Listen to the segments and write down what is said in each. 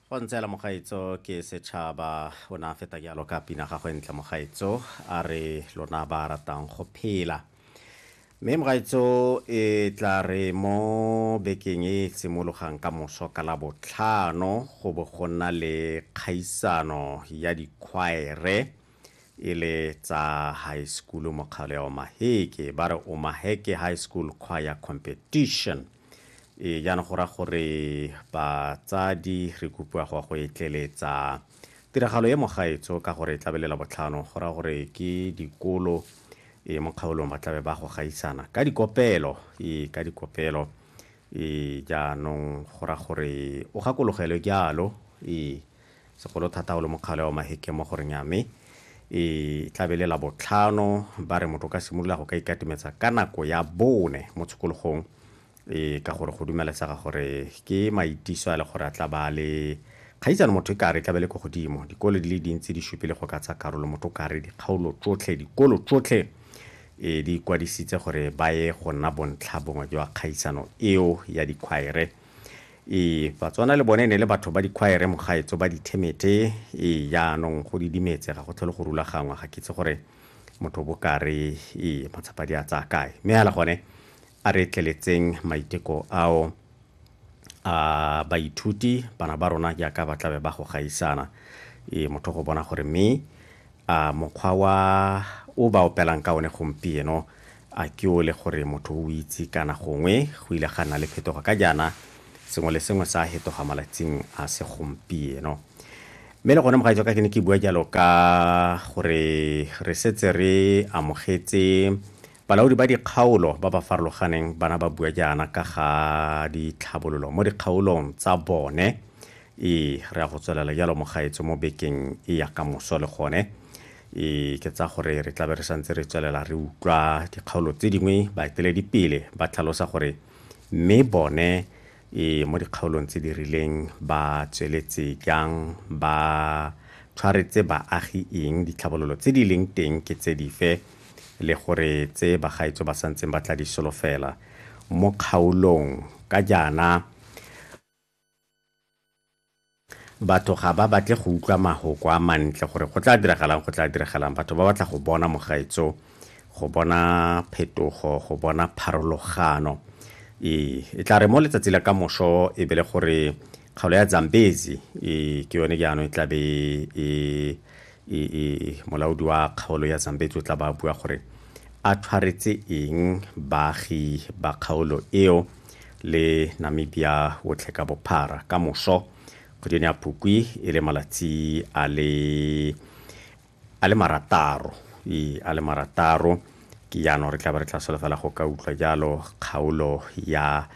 go ntseela mogaetso ke setšhaba o ne a feta jalo ka pina gagwe ntle mogaetso a re lona ba ratang go phela mme mogaetso e tla re mo bekeng e simologang ka moso ka la botlhano go bo go nna le kgaisano ya dikgwaere e le tsa high school mokgaoleo maheke ba re o maheke high school choir competition e jaana go ra gore batsadi re kopiwa go go etleletsa tiragalo e mogaetso ka gore e tlabelela botlhano go ra gore ke dikolo e mo kgaolong ba tlabe ba go gaisana ka dikopelo e ka dikopelo e jaanong go ra gore o gakologelwe jalo e segolo thata o le mokgale wa maheke mo goreng ya me e tlabe le la botlhano ba re motho o ka simolola go ka ikatimetsa ka nako ya bone mo tshokologong e ka gore go dumelesega gore ke maitiso a le gore a tla ba le kgaitsane motho e ka re tlabe le ko godimo dikolo di le dintsi di supile go ka tsa karolo motho o ka re dikgaolo tsotlhe dikolo tsotlhe e di ikwadisitse gore ba ye go nna bontlha bongwe jwa kgaisano eo ya dikgwaere Ee, Batswana le bone ne le batho ba dikhwaere mogaetso ba dithemete. Ee, jaanong go didimetse, ga go tlhole go rulagangwa, ga ke itse gore motho o bokare ee matsapa di a tsaya kae. Mme ala gone a re tleletseng maiteko ao a baithuti bana ba rona jaaka ba tlabe ba go gaisana ee motho go bona gore mme A mokgwa wa o ba opelang ka one gompieno a ke o le gore motho o itse kana gongwe go ile ga nna le phetogo ka jaana sengwe le sengwe sa hetoga malatsing a se gompieno mme le gone mogaetswa ka ke ne ke bua jalo ka gore re setse re amogetse Balaodi ba dikgaolo ba ba farologaneng bana ba bua jaana ka ga ditlhabololo mo dikgaolong tsa bone. Ee, re a go tswelela jalo mogaetso mo bekeng e ya ka moso le gone. Ee, ke tsa gore re tlabe re santse re tswelela re utlwa dikgaolo tse dingwe baeteledipele ba tlhalosa gore mme bone e mo dikgaolong tse di rileng ba tsweletse jang ba tshwaretse baagi eng ditlhabololo tse di leng teng ke tse dife le gore tse bagaetso ba santseng ba tla di solofela mo kgaolong ka jaana Batho ga ba batle go utlwa mahoko a mantle gore go tla diragalang go tla diragalang. Batho ba batla go bona mogaetso, go bona phetogo, go bona pharologano. E, e tla re mo letsatsi la ka moso e be le gore kgaolo ya Zambezi e ke yone jaanong e tla be e e, e molaodi wa kgaolo ya Zambezi o tla ba bua gore a tshwaretse eng baagi ba kgaolo eo le namibia otlhe ka bophara ka moso kgweding ya phukwi e le malatsi a le a le marataro ee a le marataro ke jaanong re tla ba re tla solofela go ka utlwa jalo kgaolo ya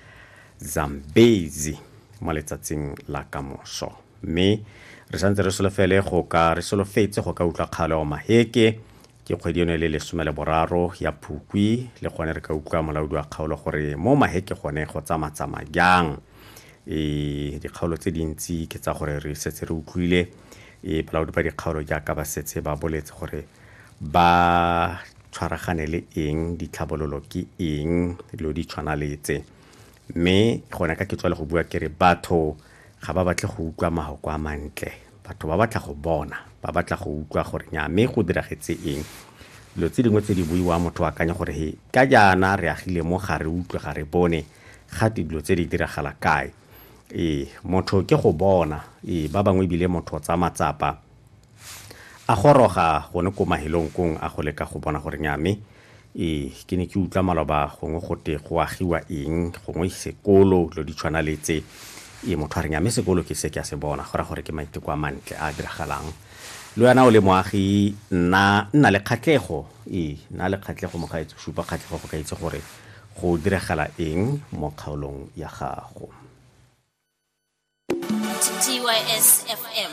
zambezi mo letsatsing la kamoso mme re santse re solofele go ka re solofetse go ka utlwa kgaolo ya maheke Ke kgwedi eno e le lesome le boraro ya Phukwi le gone re ka utlwa molaodi wa kgaolo gore mo maheke gone go tsamatsama jang. E, dikgaolo tse dintsi ke tsa gore re setse re utlwile e, balaodi ba dikgaolo jaaka ba setse ba boletse gore ba tshwaragane le eng ditlhabololo ke eng dilo di tshwana le tse mme gone ka ke tswa le go bua ke re batho ga ba batle go utlwa mahoko a mantle Batho ba batla go bona, ba batla go utlwa gore nyaa me go diragetse eng. Dilo tse dingwe tse di buiwang motho o akanya gore he, ka jaana re agile mo ga re utlwe, ga re bone, gate dilo tse di diragala kae. Ee, motho ke go bona. Ee, ba bangwe ebile motho o tsaya matsapa a goroga gone ko mahelong kong a go leka go bona gore nyaa me Ee, ke ne ke utlwa maloba gongwe gote go agiwa eng gongwe sekolo dilo di tshwana le tse ee motho a reng ame sekolo ke se ke a se bona go ra gore ke maiteko a mantle a diragalang le wena o le moagi nna nna le kgatlhego ee nna le kgatlhego mogaetso supa kgatlhego go ka itse gore go diragala eng mo kgaolong ya gago TTYS FM.